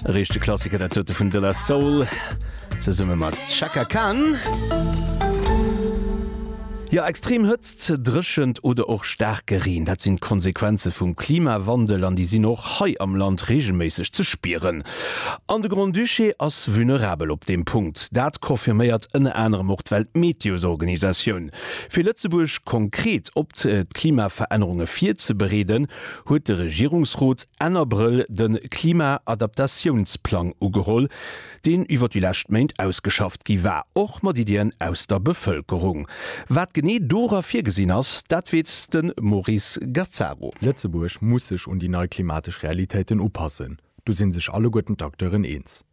E riichte Klassiker dat dote vun De La Soul zesumme mat Chaka Khan. Jo, extrem Hëtzt, Dréchent oder och staarke Reen, dat sinn d'Konsequenze vum Klimawandel an déi sinn och hei am Land reegelméisseg ze spieren. An de Grand-Duché ass vulnerabel op deem Punkt. Dat confirméiert ënner anerem och d'Weltmeteosorganisatioun. Fir Lëtzebuerg konkret op d'Klimaverännerunge virzebereeden, huet de Regierungsrot Enn Abrëll de Klima-Adaptatiounsplang ugeholl, deen iwwer déi lescht Méint ausgeschafft gi war, och mat Iddien aus der Bevëlkerung. Wat genee dora virgesinn ass, dat weess de Maurice Gazzaro. Lëtzebuerg muss sech un déi nei klimatesch Realitéiten upassen, do si sech alleguerten d'Acteuren eens.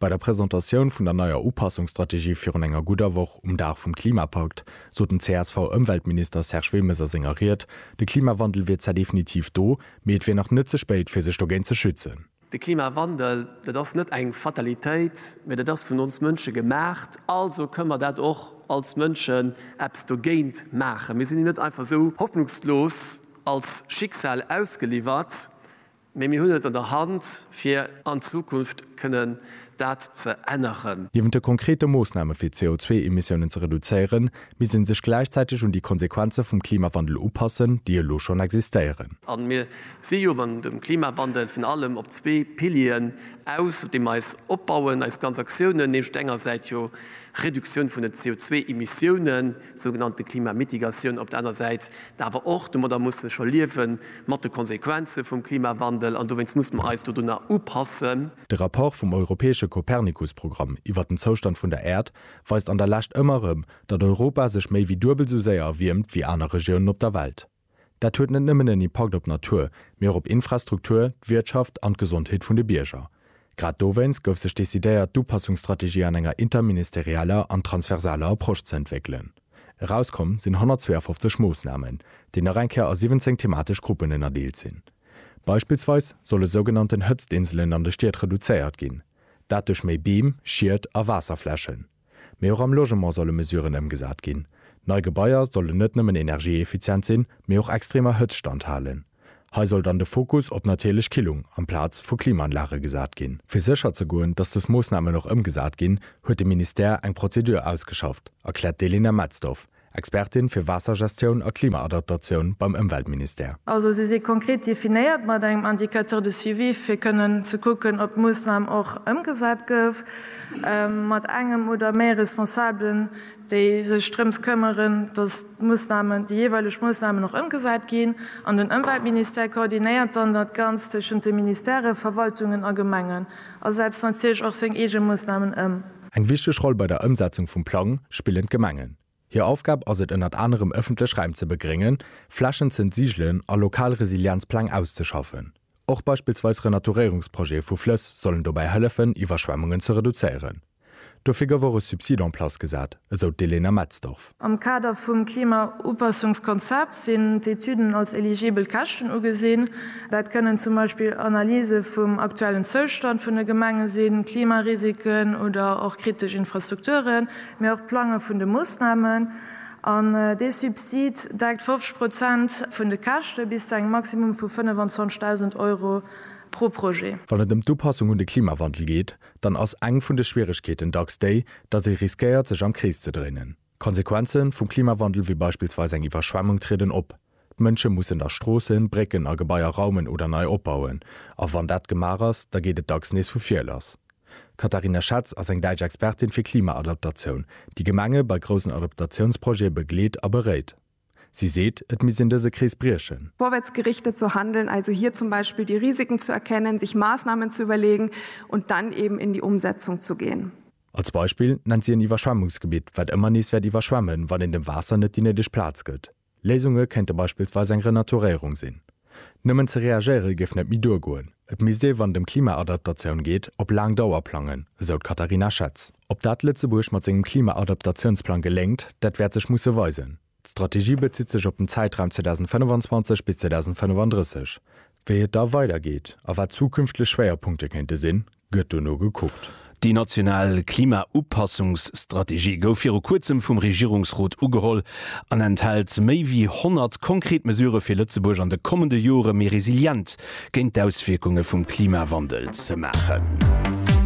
Bei der Presentatioun vun der neier Upassungsstrategie virun enger gudder Woch, um Dag vum Klimapakt, sot den CSV-Ëmweltminister Serge Wilmes a senger Ried, de Klimawandel wier zwar definitiv do, mee et wier nach net ze spéit, fir sech dogéint ze schützen. De Klimawandel, dat ass net eng Fatalitéit, mee dat ass vun ons Mënsche gemaacht, also kënne mer dat och als Mënschen eppes dogéint maachen. Mir sinn him net einfach esou hoffnungslos als Schicksal ausgeliwwert, Mee mir hunn et an der Hand, fir an Zukunft kënnen dat ze änneren. Niewent de konkrete Moossname fir d'CO2-Emissiounen ze reduzéieren, misst ee sech gläichzäiteg un déi Konsequenze vum Klimawandel upassen, déi elo schonn existéieren. A mir si jo an dem Klimawandel virun allem op zwee Pilieren aus, op deem mer eis opbauen, eis ganz Aktiounen, nämlech op der enger Säit jo Reduktioun vun den CO2-Emissiounen, sougenannte Klimamitigatioun, op der aner Säit Awer och domadder muss e scho liewen, mat de Konsequenze vum Klimawandel, an dowéinst muss mer eis dodunner upassen. De Rapport vum europäesche Copernicus-Programm iwwer den Zoustand vun der Äerd weist an der Lescht ëmmer erëm, datt Europa sech méi wéi duebel sou séier erwiermt wéi aner Regiounen op der Welt. Dat huet net nëmmen en Impakt op d'Natur, mee och op Infrastruktur, d'Wirtschaft an d'Gesondheet vun de Bierger. Grad dowéinst gouf sech decidéiert, d'Upassungsstrategie an enger interministerieller an transversaler Approche ze entwéckelen. Erauskomm sinn 152 Moossnamen, déi nach eng Kéier a 17 thematesch Gruppen ënnerdeelt sinn. Beispillsweis solle sougenannten Hëtztinselen an de Stied reduzéiert ginn, dat duerch méi Beem, Schied a Waasserflächen. Mee och am Logement solle Mesuren ëmgesat ginn. Nei Gebaier sollen net nëmmen energieeffizient sinn, mee och extremer Hëtzt standhalen. Hei soll dann de Fokus op natierlech Killung amplaz vu Klimaanlage gesat ginn. Fir sécher ze goen, datt dës Moossnamen och ëmgesat ginn, huet de Ministère eng Prozedur ausgeschafft, erkläert d'Elena Metzdorf, Expertin fir Waassergestioun a Klimaadaptatioun beim Ëmweltministère. Also si si konkret definéiert mat engem Indicateur de suivi, fir kënnen ze kucken, ob d'Moossnam och ëmgesat gouf, mat engem oder méi Responsabelen, déi sech drëms këmmeren, dass d'Moossnamen, déi jeeweileg Moossnamen och ëmgesat ginn, an den Ëmweltministère koordinéiert dann dat Ganzt tëschent de Ministèrë, Verwaltungen a Gemengen a setzt natierlech och seng eege Moossnamen ëm. Eng wichteg Roll bei der Ëmsetzung vum Plang spillen d'Gemengen. Hir Aufgab ass et ënnert anerem ëffentlech Räim ze begréngen, Flächen z'entsiegelen a lokal Resilienzpläng auszeschaffen. Och beispillsweis Renaturéierungsprojete vu Flëss sollen dobäi hëllefen, Iwwerschwemmungen ze reduzéieren. Dofir gouf och e Subsid en place gesat, esou d'Elena Metzdorf. Am Kader vum Klimaupassungskonzept sinn d'Etüden als eligibel Käschten ugesinn. Dat kënnen zum Beispill Analyse vum aktuellen Zoustand vun de Gemenge sinn, Klimarisiken oder och kritesch Infrastrukturen, mee och d'Plange vun de Moossnamen. An dee Subsid deckt 50 Prozent vun de Käschte bis zu engem Maximum vu 25.000 Euro pro Projet. Wann et ëm d'Upassung un de Klimawandel geet, dann ass eng vun de Schwieregkeeten dacks déi, datt ee riskéiert, sech am Krees ze dréinen. D'Konsequenze vum Klimawandel wéi beispillsweis eng Iwwerschwemmung trieden op. D'Mënsche mussen da Stroossen, Brécken a Gebaier raumen oder nei opbauen. A wann dat gemaach ass, da geet et dacks nees vu vir lass. D'Katharina Schatz ass eng däitsch Expertin fir Klimaadaptatioun, déi Gemenge bei groussen Adaptatiounsprojete begleet a beréit. Si seet, et misst een dëse Krees briechen. Vorwärts gerichtet zu handeln, also hier zum Beispiel die Risiken zu erkennen, sich Maßnahmen zu überlegen und dann eben in die Umsetzung zu gehen. Als Beispill nennt si en Iwwerschwemmungsgebitt, wat ëmmer nees wäert iwwerschwemmen, wann een dem Waasser net déi néideg Plaz gëtt. Léisunge kéinte beispillsweis eng Renaturéierung sinn. Nëmmen ze reagéiere géif net méi duergoen. Et misst ee wann et ëm Klimaadaptatioun geet, op laang Dauer plangen, esou d'Katharina Schetz. Ob dat Lëtzebuerg mat sengem Klimaadaptatiounsplang geléngt, dat wäert sech musse weisen. D'Strategie bezitt sech op den Zäitraum 2025 bis 2035. Wéi et da weidergeet a wat zukünftlech Schwéierpunkte kéinte sinn, gëtt dono gekuckt. Déi national Klima-Upassungsstrategie gouf viru kuerzem vum Regierungsrot ugeholl an enthält méi wéi 100 konkret Mesurë fir Lëtzebuerg an de kommende Jore méi resilient géint d'Auswierkunge vum Klimawandel ze maachen.